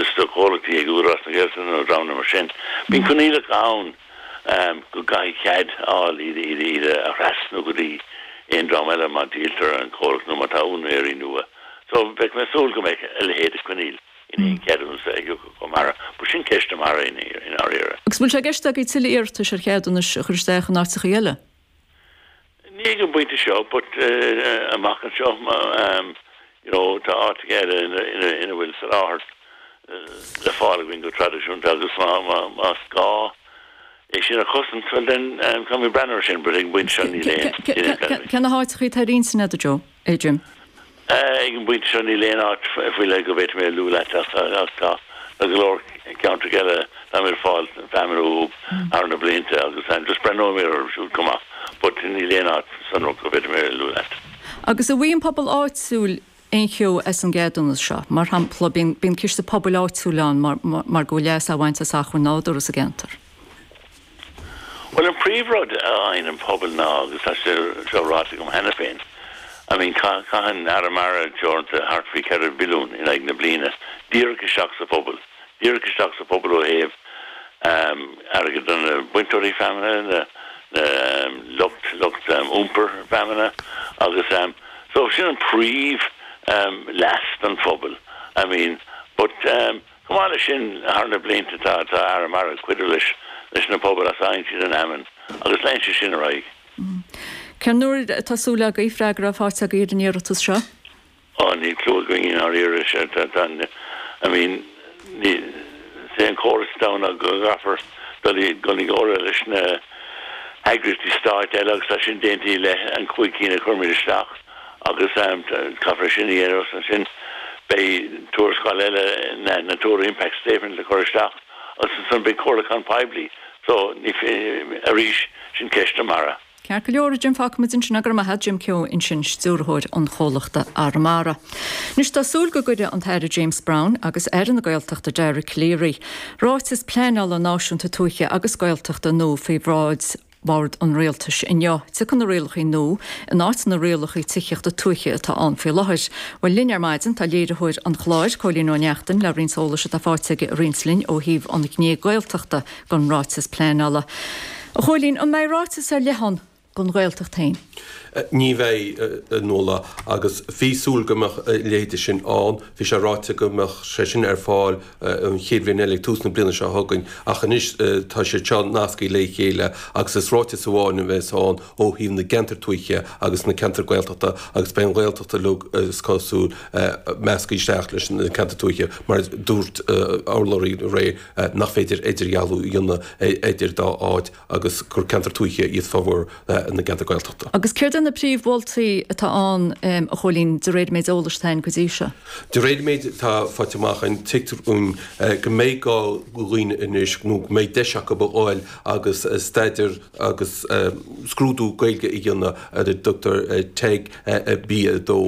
is do chomhlachtaí ag Údarás na Gaeltachta nó dreamanna mar sin, bíonn coinníollacha ann go gcaithfí cead a fháil iad a thrasnú go dtí aon dream eile má dhíoltar an comhlacht nó má tá úinéirí nua. So, bheinn ag súil go mbeadh a leithéid de choinníoll in aon cheadúnas a thiocfadh chomh maith. B'shin ceist do MARA i ndáiríre. Agus bhfuil sé i gceist agaibh tuilleadh iarratais ar cheadúnais a chur isteach in áiteachaí eile? Ní ag an bpointe seo but amach anseo you know tá áiteachaí eile ina bhfuil soláthar le fáil againn go traidisiúnta agus más gá é sin a chosaint bhuel then caithfimid breathnú air sin but ag an bpointe seo níl aon Cé na háiteachaí atá ar intinn agat, Joe? Jim. Ag an bpointe seo níl aon áit faoi leith go bhféadfadh mé a luadh leat ach tá go leor ceantracha eile a mbímid ag fáil feamainn uathu thar na blianta agus just breathnóimid orthu siúd chomh maith but níl aon áit sonrach go bhféadfadh mé a luadh leat. Agus an bhfaighidh an pobal áitiúil aon cheo as an gceadúnas seo. Mar shampla bíonn ciste pobail áitiúil ann mar go bhfuil leas á bhaint as achmhainn nádúrtha sa gceantar. Bhuel, an príomhrud a fhaigheann an pobal ná, agus tá sé seo ráite agam cheana féin, I mean, caitheann Arramara teoranta thart faoi cheithre mhilliún in aghaidh na bliana díreach isteach sa phobal, díreach isteach sa phobal ó thaobh airgead do na bainteoirí feamainne, an lucht, lucht iompar feamainne agus so sin an príomh leas don phobal, I mean, but. Chomh maith leis sin, thar na blianta tá tá Arramara ag cuidiú leis leis na pobail as a bhfaigheann siad an fheamainn agus leanfaidh sé sin ar aghaidh. Cén uair atá súil agaibh freagra a fháilt agaibh ar an iarratas seo? Oh níl clue againn i ndáiríre, I mean is é an córas atá ann go gcaithfear dul i gcon i gcomhairle leis na heagraíochtaí stáit eile agus tá sin déanta i leith an chúig cinn a chuir muid isteach. agus caithfear sin a dhéanamh agus ansin beidh tuarascáil eile na natura impact statement le cur isteach agus ansan beidh comhairliúchán poiblí so ní arís sin ceist do MARA. Ceart go leor, a Jim, fágfaidh muid ansin é, go raibh maith agat, Jim Keogh ansin stiúrthóir an chomhlachta Arramara. Anois tá súil go gcuirfidh an tAire James Browne agus Aire na Gaeltachta Dara Calleary ráiteas pleanála náisiúnta tuaithe agus Gaeltachta nua faoi bhráid an Bhord an Rialtais inniu. Tiocfaidh na rialachaí nua in áit na rialachaí tithíochta tuaithe atá ann faoi láthair. Bhuel linn ar maidin tá léiritheoir an chláir, Cóilín Ó Neachtain le roinnt eolais atá faighte aige a roinnt linn ó thaobh an ghné Gaeltachta den ráiteas pleanála. A Chóilín, an mbeidh ráiteas ar leith ann don Ghaeltacht féin? Ní bheidh, a Nuala, agus bhí súil go mbeadh a leithéid de sin ann. Bhí sé ráite go mbeadh sé sin ar fáil an chéad cheann eile ag tús na bliana seo chugainn, ach anois tá siad seo nasctha le chéile agus is ráiteas amháin a bheas ann ó thaobh na gceantar tuaithe agus na ceantar Gaeltachta agus beidh an Ghaeltacht uilig, is cosúil, measctha isteach leis na ceantair tuaithe mar a dúirt urlabhraí rté nach féidir idirdhealú a dhéanamh idir dá áit. agus gur ceantar tuaithe iad formhór na gceantar Gaeltachta. Agus céard iad na príomh mholtaí atá ann a Chóilín, de réir an méid eolais atá ann go dtí seo? De réir an méid atá faighte amach againn, tuigtear dhúinn go mbeidh gá go dhaoine anois nó go mbeidh deis acu a fháil agus staidear agus scrúdú Gaeilge a dhéanamh ar a dtugtar teg B2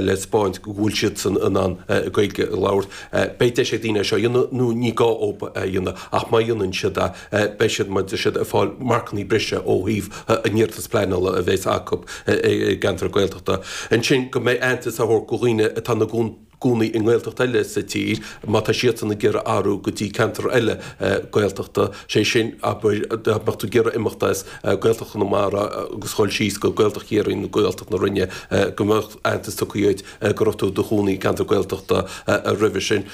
le speáint go bhfuil siadsan in ann Gaeilge a labhairt. Beidh deis ag daoine é seo a dhéanamh nó ní gá dhóibh a dhéanamh ach má dhéanann siad é, beidh siad, siad ag fáil marcannaí breise ó thaobh a n-iarratas pleanála a bheas acu i gceantar Gaeltachta. Ansin go mbeidh aitheantas á thabhairt go dhaoine atá ina gcónaí i nGaeltacht eile sa tír má tá siadsan ag iarraidh athrú go dtí ceantar eile Gaeltachta, sé sin, dá mbeadh tú ag iarraidh imeacht as Gaeltacht Chonamara agus dhul síos go Gaeltacht Chiarraí nó Gaeltacht na Rinne, go mbeadh aitheantas tugtha dhuit go raibh tú i do chónaí i gceantar Gaeltachta roimhe sin.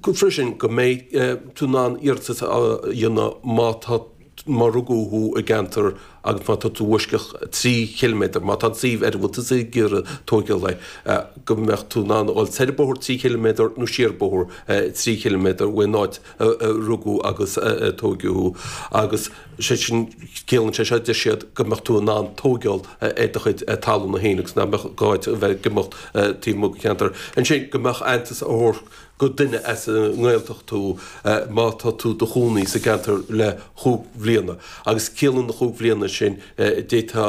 freisin go mbeidh tú in ann iarratas a dhéanamh má tá, má rugadh thú i gceantar agus má tá tú i bhfoisceacht trí chiliméadar, má tá an suíomh ar a bhfuil tú ag iarraidh tóigeáil é, go mbeadh tú in ann a dhul soir bóthar trí chiliméadar nó siar bóthar trí chiliméadar ón áit a rugadh agus a tóigeadh thú agus sé sin, ciallaíonn sé seo, deir siad, go mbeadh tú in ann tóigeáil ar do chuid talúna féin agus nach mbeadh gá dhuit a bheith ag imeacht taobh amuigh den cheantar. Ansin go mbeadh aitheantas á thabhairt. go duine as an nGaeltacht thú má tá tú i do chónaí sa gceantar le chúig bhliana agus ciallaíonn na chúig bhliana sin dá mba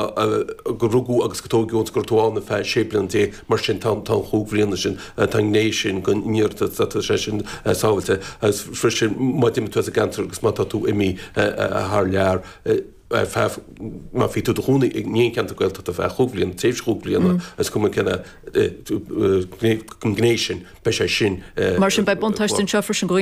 gur rugadh agus gur tóigeadh ann thú go raibh tú ann ar feadh sé bliana déag mar sin tá an chúig bhliana sin tá an ghné sin dhen iarratas tá sé sin sábháilte agus freisin má d'imigh tú as an gceantar agus má tá tú imithe thar lear ar feadh, má bhí tú i do chónaí in aon cheantar Gaeltachta ar feadh chúig bhliana, tréimhse chúig bliana, is cuma cén gné sin, beidh sé sin. Mar sin, beidh buntáiste anseo freisin ag daoine